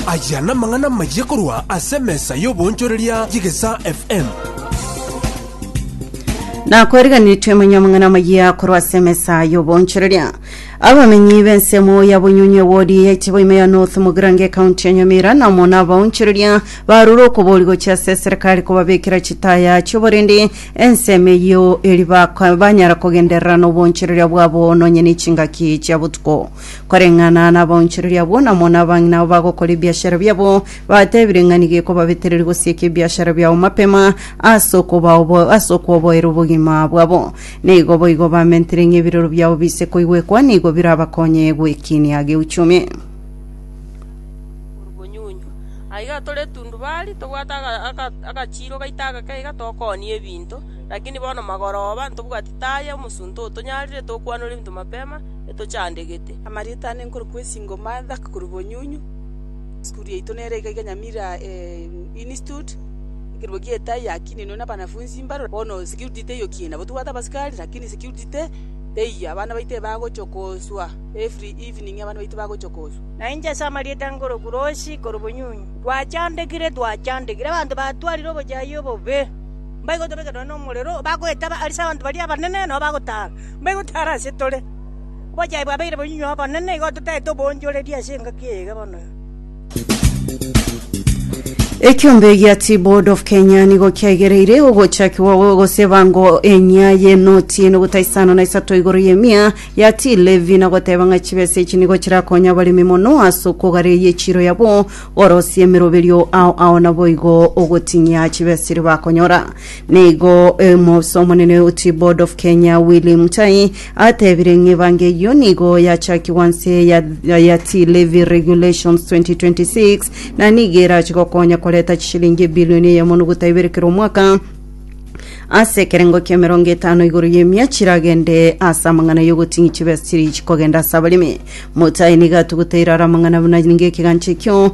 Aya namang'ana amayia korwa ase emesa y'oboonchoreria y'Egesaa FM. na kwariganitwe manya amang'ana amayia korwa ase emesa y'oboonchoreria abamenyi b'ensemo ya bonyonyi ewodi ya itiboima ya north mogirango ekaunti ya nyamira na omona abaonchoreria barure okobori gochia ase eserikari kobabekera chitaya chioborende ensemo eyio eri baka- banyara kogenderera n'oboonchoreria bwabo nonye ne chingaki chia botuko Koreng'ana nabaonchoreria abwo, namo nabang'ina abo bagokora ebiashara biabo, batebire ng'a nigo ekobabetereria gosieka ebiashara biabo mapema ase okobaobo ase okwoboera obogima bwabo. Na igo boigo bamentire ng'a ebiroro biabo biise koigwekwa nigo birabakonye gwekinia geuchumi. Orobonyunywa. Aiga tore etundubari, tobwate aga- aga- agachiiro gaito agake iga tokoonia ebinto, lakini bono magoroba ntobwati taya omosunte otonyarire tokwanore ebinto mapema, etochandegete. Amarieta ane nkorokwa Esingo Martha, korwa Bonyunyu, esukuru yaito nere iga iga Nyamira Institute, ekerua gia etai yakininwe na abanafunzi mbaro, bono security teiyo kina nabo tobwate abasikari lakini security te teiyo abana baito ebagochia koswa every evening abana baito bagochia koswa. Na inche ase amarieta nkorokwa Rosi korwa Bonyunyu, twachandegire twachandegire abanto batwarire obochayia obobe, mbaigo tobekerwe nomorero, bagoetaba arese abanto baria abanene nabo bagotara. Mbaigo tare ase tore. Obochai bwabeire bonyinyi obonene, igo totaete obonchoreri ase engaki eye iga bono. Ekiombe gia Tea Board of Kenya nigo kiaigereire ogochakigwa gwa ogoseba ngo enyia y'enoti enuguta isano na isato igoro y'emia ya tea levy na goteba ng'a chibesa echi nigo chirakonye abaremi mono ase okogareyia echiro yabo gorosia emeroberio ao ao naboigo ogoting'ia chibesa chiria bakonyora. Nigo omoofisa omonene o Tea Board of Kenya Willy Mutai atebire ng'a ebango eyio nigo yachakigwa nse ya, ya Tea Levy Regulations 2026 na nigo erache gokonya koreta chishilingi ebilioni eyemo noguta ibere kera omwaka ase ekerengo ki'emerongo etano igoro y'emia chiragende ase amang'ana y'ogoting'ia chibesa chiri chikogenda ase abaremi. Mutai nigo atuguteire are amang'ana buna nigo ekegancha ekio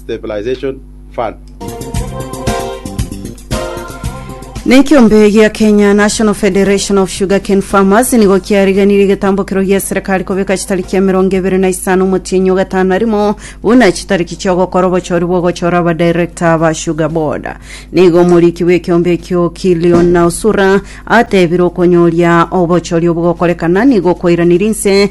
Stabilization Fund. Na ekiombe gia Kenya National Federation of Sugarcane Farmers nigo kiariganirie egetambokero gia serikali kobeka chitariki ya emerongo ebere na isano omotienyi o gatano na rimo buna chitariki chia ogokora obochori bwa ogochora abadirector ba Sugar Board. Nigo omoriki bw'ekiombe ekio Killion Nausura atebire okonyoria obochori obogokorekana nigo kwairanirie inse